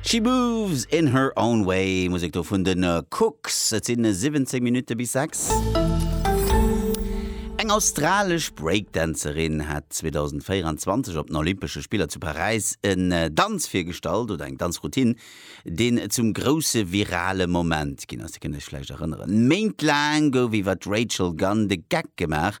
She moves in her own way, Musek do vun den Kooks. Et sinn 17 Minutte bis 6. Eng australesch Breakdancerin hat 2024 op den Olympesche Spiller zu Paräis en äh, Danz virgestallt, oder eng Danzroutine, deen zum grousse virale Moment ginn ass. Dir kënnt Iech vläicht erënneren, Méint laang gouf iwwer d'Rachel Gunn de Geck gemaach,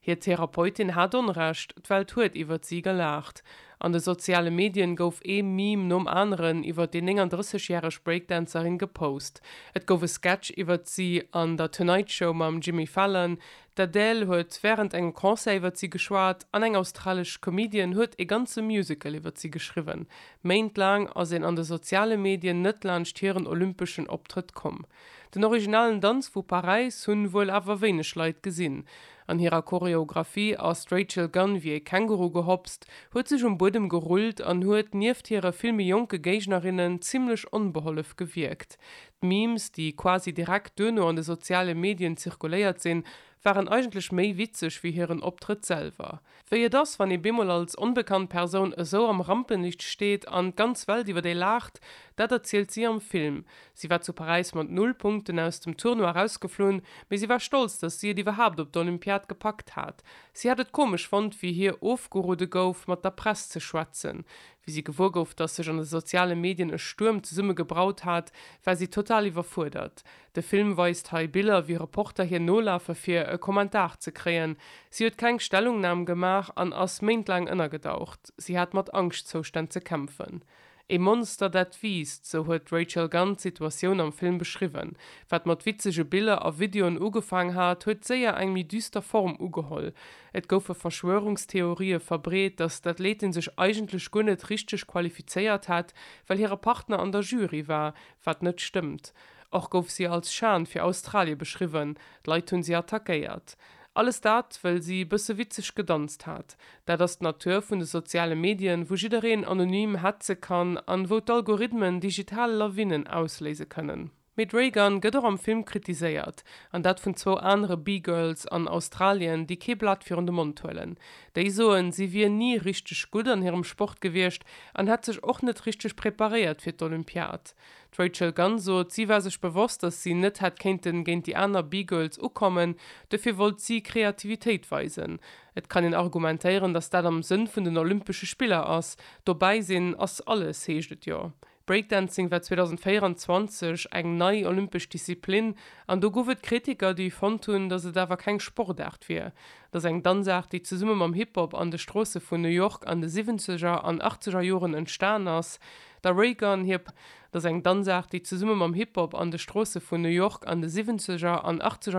Hir Therapeutin hat Onrecht, d'Welt huet iwwert si gelaacht. An de soziale Medien gouf ee Meme nom aneren iwwert déi 39 järeg Breakdancerin gepost. Et gouf e Sketch iwwert si an der Tonight Show mam Jimmy Fallon, d'Adele huet wärend engem Concert iwwert si geschwat an eng australesch Comedienne huet ee ganze Musical iwwert si geschriwwen. Méint laang ass een an de soziale Medien net laanscht hiren olympeschen Optrëtt komm. Den originalen Danz vu Paräis hunn wuel awer wéineg Leit gesinn. An hirer Choreographie ass d'Rachel Gunn wéi ee Känguru gehopst, huet sech um Buedem gerullt an huet nieft hire vill méi jonke Géignerinnen zimmlech onbehollef gewierkt. D'Memes, déi quasi direkt duerno an de soziale Medien zirkuléiert sinn, waren eigentlech méi witzeg wéi hiren Optrëtt selwer. Wéi et ass, wann ee bemol als onbekannt Persoun esou am Rampenlicht steet an d'ganz Welt iwwer ee laacht, dat erzielt si am Film. Si war zu Paräis mat null Punkten aus dem Tournoi erausgeflunn, mee si war stolz, datt si et iwwerhaapt op d'Olympiad gepackt hat. Si hat et komesch fonnt, wéi hir ofgeroode gouf, mat der Press ze schwätzen. Wéi si gewuer gouf, datt sech an de soziale Medien e Stuerm zesumme gebraut hat, war si total iwwerfuerdert. De Film weist hei Biller, wéi Reporter hir nolafe fir e Kommentar ze kréien. Si huet keng Stellungnam gemaach an ass méintlaang ënnergedaucht. Si hat mat Angschtzoustänn ze kämpfen. E Monster, dat wiisst, sou huet d'Rachel Gunn d'Situatioun am Film beschriwwen. Wat mat witzege Biller a Videoen ugefaang hat, huet séier eng méi düster Form ugeholl. Et goufe Verschwörungstheorië verbreet, datt d'Athletin sech eigentlech guer net richteg qualifizéiert hätt, well hire Partner an der Jury war, wat net stëmmt. Och gouf si als Schan fir Australie beschriwwen, d'Leit hunn si attackéiert. Alles dat, wëll si e bësse witzeg gedanzt hat. Dat ass d'Natur vun de soziale Medien, wou jiddereen anonym hetze kann an wou d'Algorithmen digital Lawinnen ausléise kënnen. Mee d'Reagan gëtt och am Film kritiséiert, an dat vun zwou anere B-Girls an Australien, déi kee Blat virun de Mond huelen. Déi soen, si wier ni richteg gutt an hirem Sport gewiescht an hätt sech och net richteg preparéiert fir d'Olympiad. D'Rachel Gunn sot, si war sech bewosst, datt si net hätt kéinten géint déi aner B-Girls ukommen, dofir wollt si Kreativitéit weisen. Et kann een argumentéieren, datt dat am Sënn vun den Olympesche Spiller ass, dobäi sinn ass alles, heescht et jo. Breakdancing war 2024 eng nei olympesch Disziplin an do guff et Kritiker, déi fonnt hunn, datt et awer keng Sportaart wier. Et ass eng Danzaart, déi zesumme mam Hip-Hop an de Stroosse vun New York an de Siwwenzeger an Achtzeger Joren entstan ass. Der Raygun Hip, dat ass eng Danzaart, déi zesumme mam Hip-Hop an de Stroosse vun New York an de Siwwenzeger an Achtzeger